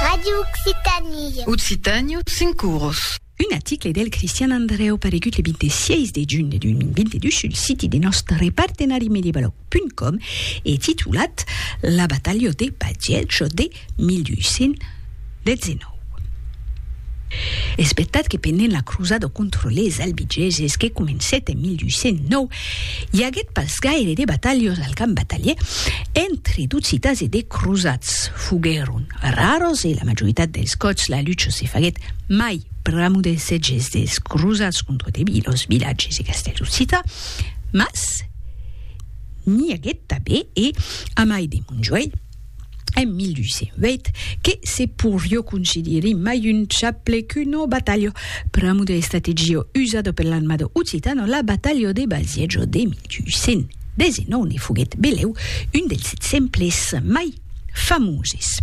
Radio Occitanie. Occitània, cinc oros. Un article del Cristian Andrèu paregut le 26 de junh de 2022 sul siti de nòstre partenari medievaloc.com e titulat La batalha de Bagiècho de 1200 19. Espetat que pendent la crosada contra les Albigeses que comencèt en 1209, i aguèt pas gaire de batalhas al camp batalièr entre d'occitans e de crosats, foguèron raras e la majoritat dels còps la lucha se faguèt mai pr'amor dels sètges dels crosats contra de vilas, vilatges e castèls occitans, mas n'i aguèt tanben e, a mai de Montjoèlh, en 1208 que se porió considerir mai un chaple qu'uno batalho. Pramo de estrategio usado per l'armado occitano, la batalho de Basiejo de 1219 ne foguèt beleu un dels exemples mai famoses.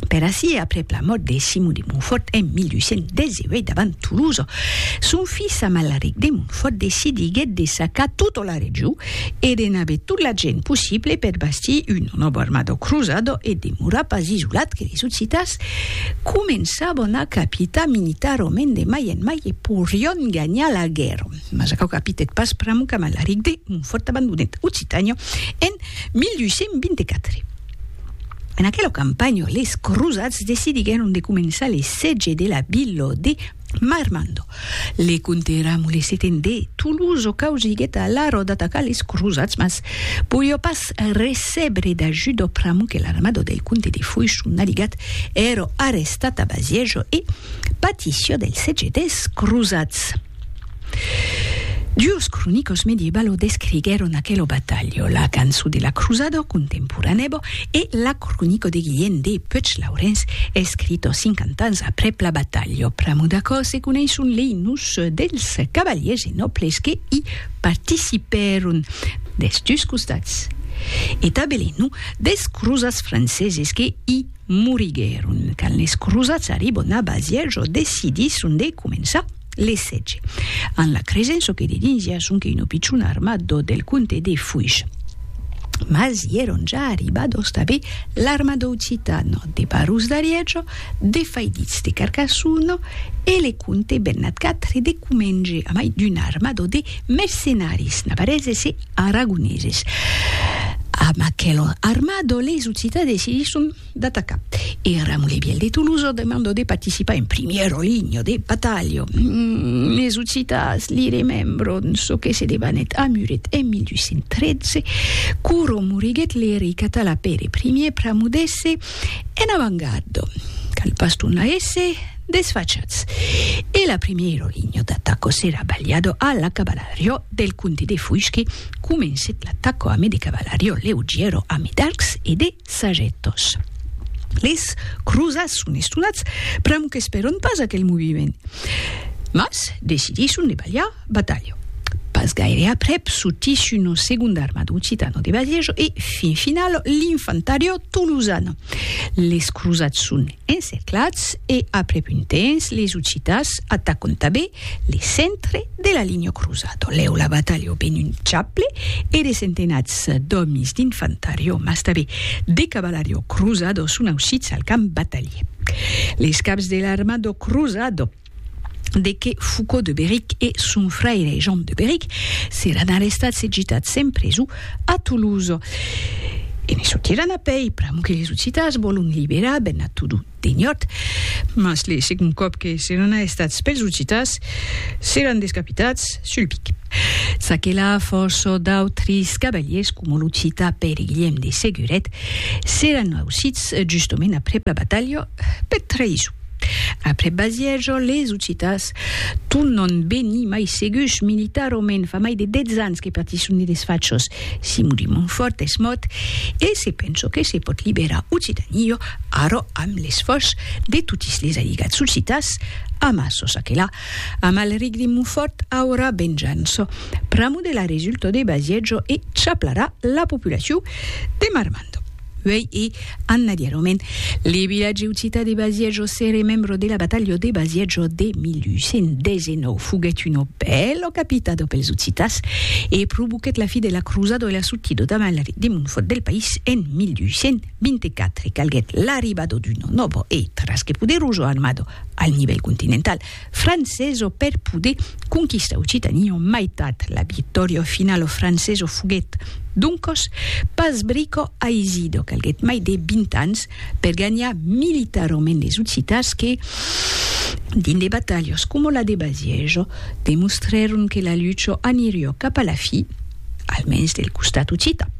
Per aicí, aprèp la mòrt de Simon de Montfort en 1218 davant Toulouse, son filh Amalaric de Montfort decidiguèt de sacar tota la region, e de n'aver tot l'agent possible per bastir un novo armado cruzado e demorar pas isolat que les Occitans començavan a capitar militarament de mai en mai e porion ganhar la guèrra. Mas aquò capitèt pas pr'amor qu'Amalaric de Montfòrt abandonèt Occitània en 1224. En aquela campanha, les cruzats decidiguèron de començar l'essètge de la vila de Marmando, le conte era molesiten de Toulouse o causiguet a la ròda atacar les crosats, mas poió pas recébre d'ajut o pr'amor que l'armado del conte de Foix o Naligat èro arrestat a Baziejo e patició del setge des crosats. Duos cronicos medievalo descriguèron aquelo batalho, la canço de la Cruzado, contemporanèbo, e la cronico de Guilhèn de Puech-Laurens, escrito cinquanta ans aprèp la batalho. Pr'amor d'aquò se coneisson lei nus dels cavalièrs e nòbles que i participèron des dus costats e tanben lei nus des cruzats franceses que i moriguèron quand les cruzats arribon a Bazièrs o decidisson de començar Le sètge. An la cresen çò que de dins ja sonque un opicion armat d'ò del comte de Fuish. Mas i èron ja arribados tanben l'arma d'Occitano, de Barros d'Ariejo, de Faiditz de Carcassono e le comte Bernat Quatre de Comenge, a mai d'una armada de mercenaris navareses e aragoneses. Amb aquela armada les Occitans decidisson. d'atacar. E Ramon Lebiel de Tolosa demando de participar en primièro linho de batalha. Es Occitans li remembron çò que se debanèt a Muret en 1213, Curo moriguèt l'erei català Pere Primièr pramudèsse en avangarda, cal pas tornar èsser desfachats, e la primièro linho d'ataca s'èra balhada a la cavalariá del comte de Fuisque, comencèt l'ataca amé de cavalariá leugièra amé d'arcs e de Sagetos. Les crosats son estonats pr'amor qu'esperon pas aquel moviment, mas decidisson de balhar batalha. Pas gaire aprèp sortís una segonda armada occitana de Bagejo e, fin finala, l'infantariá tolosana. Les crosats son encerclats e, aprèp un temps, les occitans atacon tanben Le centre de la linha cruzado, lèu la batalha o ben un chaple e de centenats d'òmis d'infantariò, mas tanben de cavalariò cruzado son ausits al camp batalhier. Les caps de l'armado cruzado, de que Foucau de Beric e son fraire Jean de Beric seràn arrestats e gitats en preso a Toulouse. E ne sortiràn a pei, pr'amor que les occitans vòlon liberar ben a totun. Deniòt. Mas le segond còp que seràn aestats pels occitas, seràn descapitats sul pic. Ça que la fòrça d'autris cavaliers, coma l'occita Pèri Guilhèm de Seguret, seràn ausits justament aprèp la batalha, per traïson. Aprèp Bazièja, les occitas tornan venir mai segus militarament, fa mai de dètz ans que patisson de desfachas. Simon de Montfòrt es mòrt e se pensa que se pòt liberar Occitania Ara, amb l'esfòrç de totis les aligats solcitats, ama çò ça que la, Amalric de Montfort aurà venjança pramo de la resulta de Baziègio e chaplarà la populacion de Marmande. Uèi e annadièrament, le vilatge occitan de Baziègio se remembra de la batalha de Baziègio de 1819. Foguèt una bèla capitada pels Occitans e provoquèt la fi de la crosada e la sortida d'Amalric de Montfort del país en 1820. 24 calguèt l'arribado d'uno novo e trasque poderoso armado al nivèl continental franceso per poder conquistar Occitania en maitat. La victòria finala franceso foguèt, doncos, pas brico aisido, calguèt mai de 20 ans per ganhar militarament les Occitans que, dins de batalhas coma la de Baziejo, demostrèron que la lucha aniriá cap a la fi, almens del costat occitan.